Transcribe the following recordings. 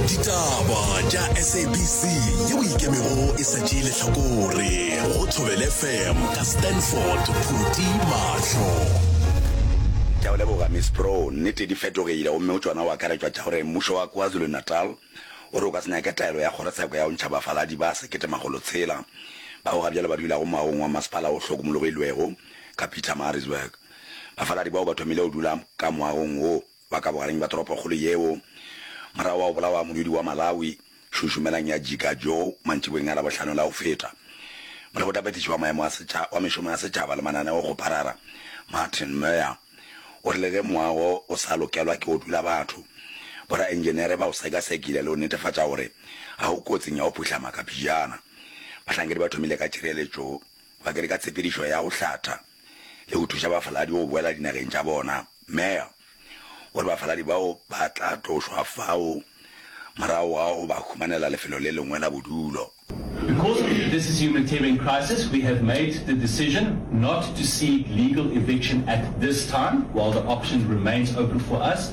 ditaba tša sabc yeo ikemego e sa tšee lehlakore go thobele fm ka stanford phuti mahlo ke a o leboga miss pro nnete di fetogile gomme o tšona o akaretšwa tša gore mmušo wa kwazulu-natal o re o ka se nyake taelo ya kgorotsheko ya go ntšha bafaladi ba sekete makgolo tshela bao ga bjale ba dulago moaong wa masepala o hlokomologilwego ka pietermaritzburg bafaladi bao ba thomile go dula ka moagong wo ba ka bogareng bja toropokgolo yeo. Morago ga go bolawa modudi wa Malawi, Šušumelang ya Jika Joe mantšiboeng a Labohlano la go feta, molekgothaphethiši wa maemo wa mešomo ya setšhaba le mananeo go Parara, Martin Moear, o rile ge moago o sa lokelwa ke go dula batho, boraentšenere ba o sekasekile le go netefatša gore ga o kotsing ya go phuhlama kapejana. Bahlankedi ba thomile ka tšhireletšo bakedi ka tshepedišo ya go hlatha. le go thuša bafaladi go boela dinageng tša bona. Mayor gore bafaladi bao ba tla tlošwa fao morago ga go ba humanela lefelo le lengwe la bodulo. Because this is a humanitarian crisis, we have made the decision not to seek legal eviction at this time while the option remains open for us.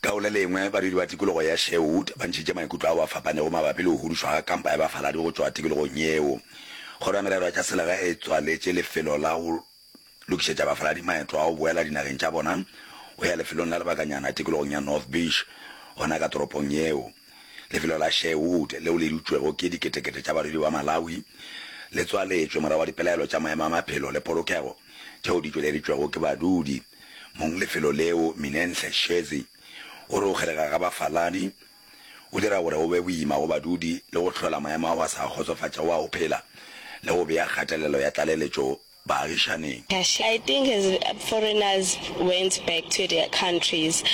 Ka go le lengwe, badudi ba tikologo ya Sherwood ba ntšhitše maikutlo ao a fapanego mabapi le go hudušwa ga kampa ya bafaladi go tšwa tikologong yeo. Kgoro ya Merero ya tša Selegae e tswaletše lefelo la go lokišetša bafaladi maeto a go boela dinageng tša bona go ya lefelong la lebakanyana tikologong ya North Beach, gona ka toropong yeo. Lefelo la Sherwood, leo le dutšwego ke diketekete tša badudi ba Malawi, le tswaletšwe morago ga dipelaelo tša maemo a maphelo le polokego tšeo di tšweleditšwego ke badudi. Mong lefelo leo, Minenhle Shezi, o re go kgelega ga bafaladi go dira gore go be boima go badudi le go hlola maemo ao a sa kgotsofatšago a go phela le go bea kgatelelo ya tlaleletšo baagišaneng. I think as foreigners went back to their countries,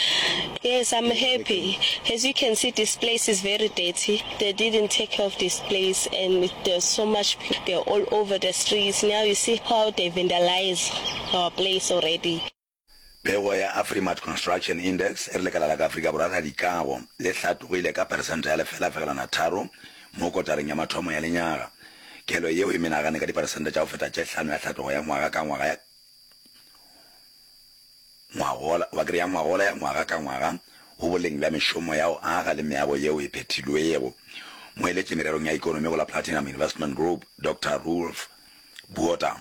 yes I'm happy, as you can see this place is very dirty, they didn't take care of this place and there's so much, they're all over the streets, now you see how they vandalise. our place already. Pego ya Afrimat Construction Index e re lekala la ka Afrika Borwa la dikago le hlatogile ka peresente ya lefelafegelwana tharo mo kotareng ya mathomo ya lenyaga. Kelo yeo e menagane ka diperesente tša go feta tše hlano ya hlatogo ya ngwaga ka ngwaga ya ngwagola wa kere ya ngwagola ya ngwaga ka ngwaga go boleng bja mešomo ya go aga le meago yeo e phethilwego. Moeletši mererong ya ekonomi go la Platinum Investment Group, Doctor Roelf Botha,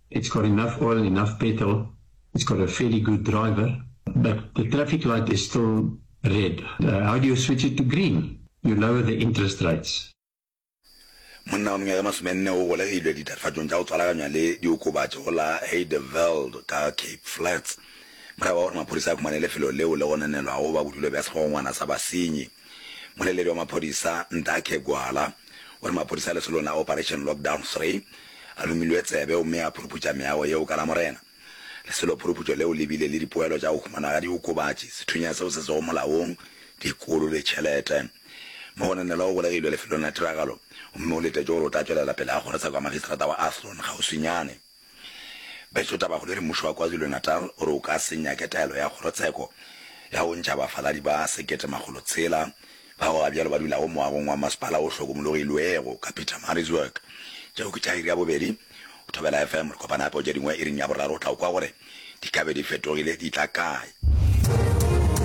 It's got enough oil, enough petrol, it's got a fairly good driver, but the traffic light is still red. Uh, how do you switch it to green? You lower the interest rates. Monna wa mengwaga e masomenne o golegilwe ditatofatšong tša go tswalaganywa le diokobatši go la Heideveld ka Cape Flats morago ga gore maphodisa a khumane lefelo leo le gonanelwago ba bodulo bja segogongwana sa basenyi. Mmueleledi wa maphodisa Ndakhe Gwala o re maphodisa a lesolong la Operation Lockdown Three a lumilwe tsebe gomme a phuruputša meago yeo ka Lamorena. Leselo phuruputšo leo le bile le dipoelo tša go humanwa ga diokobatši, sethunya seo se sego molaong, dikolo le tšhelete. Mogononelwa o golegilwe lefelong la tiragalo gomme o letetšwe gore o tla tšwelela pele a kgorotsakwa magistrata wa Athlone kgauswinyane. Betso Tabahulere Mmušo wa KwaZulu-Natal o re o ka se nyake taelo ya kgorotsheko ya go ntšha bafaladi ba sekete makgolo tshela bao ga bjalo ba dulago moagong wa masepala o hlokomologilwego ka Pietermaritzburg. Tšeo ke tša iri ya bobedi go Thobela FM. Re kopana gape go tše dingwe iring ya boraro o tla kwa gore di ka be di fetogile di tla kae.